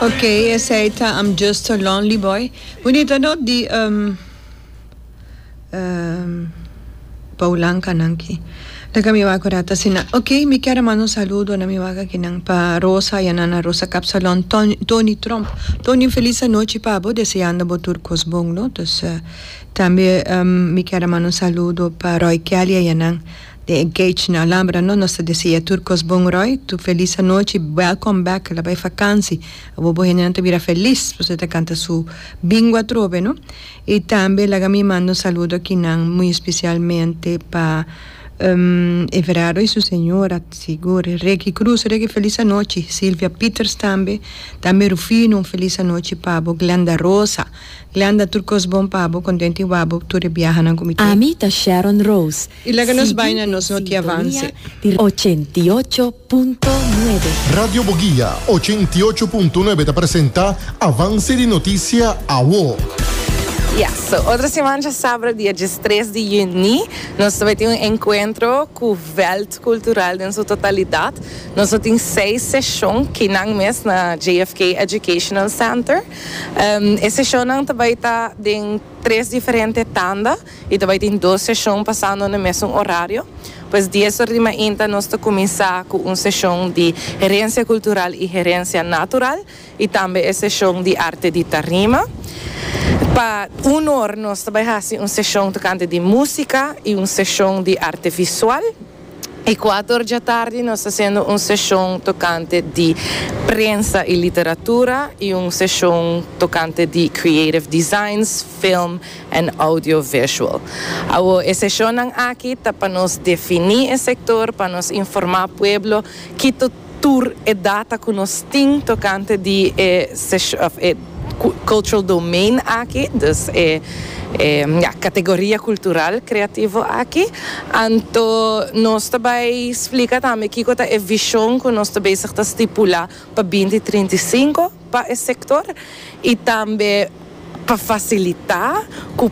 Ok esey ta I'm just a lonely boy. Bunita not di um um Boulanka nan ki. Lo ke mi wak ora ta asina. Ok mi kier a manda un saludo na mi waga kinan pa Rosa ya nana Rosa Kapsalon, Ton Tony Trump. Tony un feliz anochi pa bo deseando bo tur kos bon lo. Dus tambe um mi kier a manda un saludo pa Roy Kelly a yanan. Den e gage na Alambra no nos ta deseá tur kos bon Roy, tur felis anochi, welcome back, la bai fakansi, abo bo hendenan ta bira felis pasobra e ta kanta su bingo atrobe no, i tambe laga mi manda un saludo akinan muy especialmente pa Everardo i su señora sigur, Ricky Cruz, Ricky felis anochi, Silvia Peters tambe, tambe Rufino un felis anochi pa bo, Glenda Rosa, Glenda tur kos bon pa bo, kontenti wak bo tur e biahanan ku mi te. Ami ta Sharon Rose, I laga nos bai na nos notiavanse. Siguiente sintonia di ochenta y ocho punto nuebe. Radio Boguia ochenta y ocho punto nuebe ta presenta Avance di Noticia Awo. Ya, so otro simancha sabra dia diestres di yüni nos ta bai tin un encuentro cu veld cultural den su totalidad. Nos lo tin seis seshon kinan mes na JFK Educational Center. E seshonnan ta bai ta den tres diferente tanda. I ta bai tin dos seshon pasando na e mesun orario. Pues dies ora di mainta nos ta kuminsá ku un seshon di herensia kultural i herensia natural i tambe e seshon di arte di tarima. Pa un or nos ta bai hasi un seshon tokante di músika i un seshon di arte visual. E kuater dja tardi nos ta siendo un seshon tokante di prensa i literatura i un seshon tokante di creative designs, film en audiovisual. Awor e seshonnan aki ta pa nos defini e sektor, pa nos informá pueblo ki. tur e data cu nos tin tocante di e sesho, of e cultural domain aki, dus e, ja, categoria cultural creativo aki. Anto nos ta bay splica tambe kico ta e vision cu nos ta bezig ta stipula pa binti trinta i sinku pa e sector y tambe pa facilita cu.